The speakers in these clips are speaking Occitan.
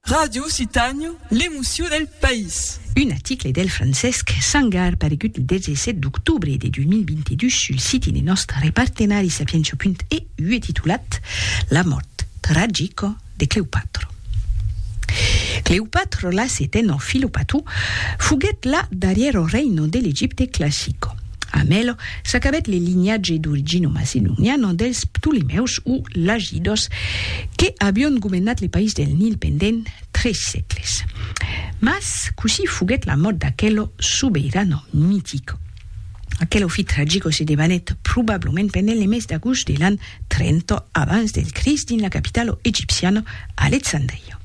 Ràdio Occitània, l'emocion del país. Un article del Francesc Sangar paregut lo 17 d'octobre de 2022 sul siti de nòstre repartenari Sapientia.eu e titulat La mòrt tragica de Cleopatra. Cleopatra la setena Filopatu foguèt la darrièra reina de l'Egipte classica. A Melo s'acabèt le linhatge d'originomacenoniano dels Ptolemèus o Lagidos que avion governat le país del Nil pendent tres sègles. Mas cossí foguèt la mòrt d'aquelo sobeirano mitic? Aquelo fit tragico se debanèt probablament pendent le mes d'agost de l'an 30 abans del Crist dins la capitalo egipciana Alexandria.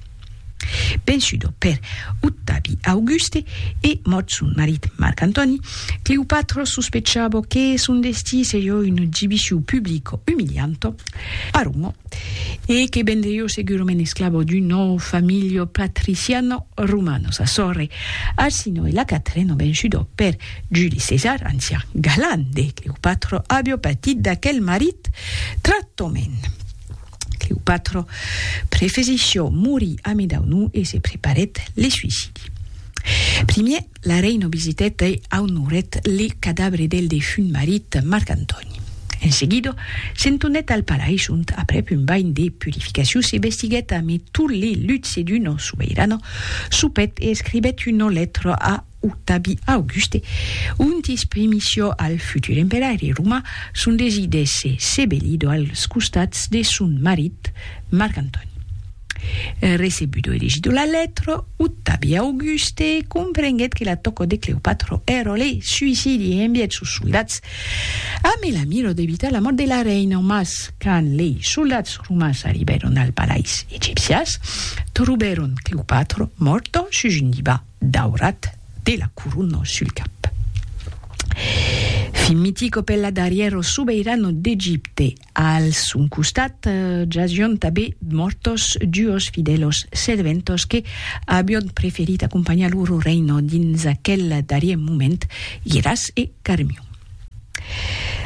Vençudo per Octavi Auguste e mòrt son marit Marc Antòni, Cleopatra sospechava que son destí seriá un exibicion publica umilianta a Roma e que vendriá segurament esclava d'una familha patriciana romana. Sa sòrre Arsinoe e la Catrena, vençuda per Juli Cesar, ancian galan de Cleopatra, aviá patit d'aquel marit tractament. Cleopatra prefesí çò morí ami dau nu e se preparèt le suicidi. Primier, la reina visitèt e aunorèt le cadabre del defunt marit Marc Antòni. En seguida, se'n tonèt al palais ont, aprèp un banh de purificacion, se vestiguèt ame tot le luxe d'una sobeirana, sopèt e escribèt una lètra a octabi Auguste, ontis primisio al futur emperaire romà son desir d'èsser sebelido als costats de son marit Marc Antòni. Recebudo elegido la letra, octabi Auguste comprenguèt que la tòca de Cleopatra èra le suicidi e envièt sos soldats ambe la mira d'evitar la mòrt de la reina, mas quand lei soldats romans arribèron al palais egipcias trobèron Cleopatra mòrta sus un divan. daurat de la corona sul cap. Fin mitico per la darrièro sobeirano d'Egipte. Al son costat jasión tabé mortos duos fidelos serventos que abión preferit acompanhar loro reino dins aquel darrier moment, Giras e Carmión.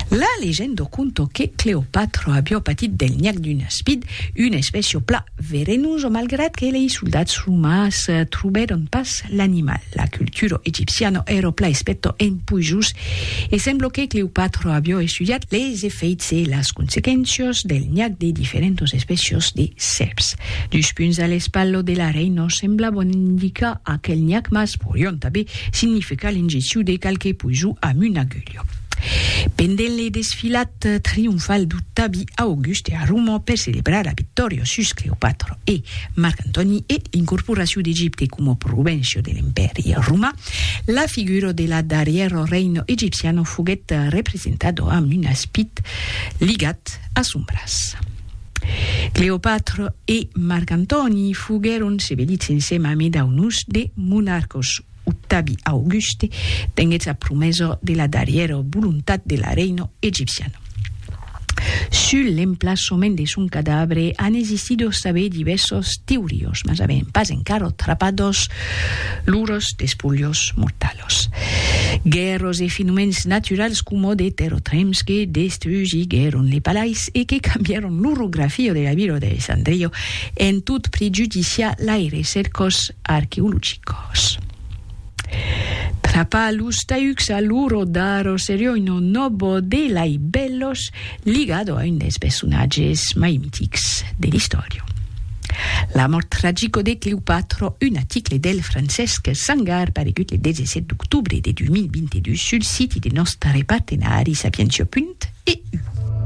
La legendo conto que Cleopatra abió patit del nhac d'un aspid, un espècio pla verenuso malgrat que lei soldats romans trobèron pas l'animal. La cultura egipciana èra pla espèta en puisós e sembla que Cleopatra abió estudiat leis efèits e las consequéncias del nhac de diferentas espècias de sèrps. Dus punts a l'espatla de la reina semblabon indicar aquel nhac mas porion tanben significa l'ingeciu de qualque poiso amb un agulho. Pendent le desfilat trionfal du tabi a August e a Roma per celebrar la victòria sus Cleopatra e Marc Antòni e l'incorporaciu d'Egipte coma provincia de l'Empèri Romà, la figura de la darrièra reina egipciana foguèt representada amb un aspit ligat a son braç. Cleopatra e Marc Antòni foguèron sevelits ensema amé dau nus de monarcos. Octavi Auguste tenguèt sa promesa de la darrièra volontat de la reina egipciana. Sul l'emplaçament de son cadavre an existit o s'avè divèrsas teorias, mas avèm pas encara trapat los lors despulhos mortals. Los guèrros e fenomèns naturals coma de terrotrems que destrugiguèron le palais e que cambièron l'orografia de la vila d'Alessandria en tot prejudiciar laires cercos arqueologicos. Trapar los taucs a loro daro serioi non nobo de lai bellos, ligado a un des personatges mai mitics de l'istòria. La mòrt tragico de Cleopatra, un aticle del Francesc Sangar paregut le 17 d'octobre de 2022 sul siti de nòstre partenari Sapientia. EU.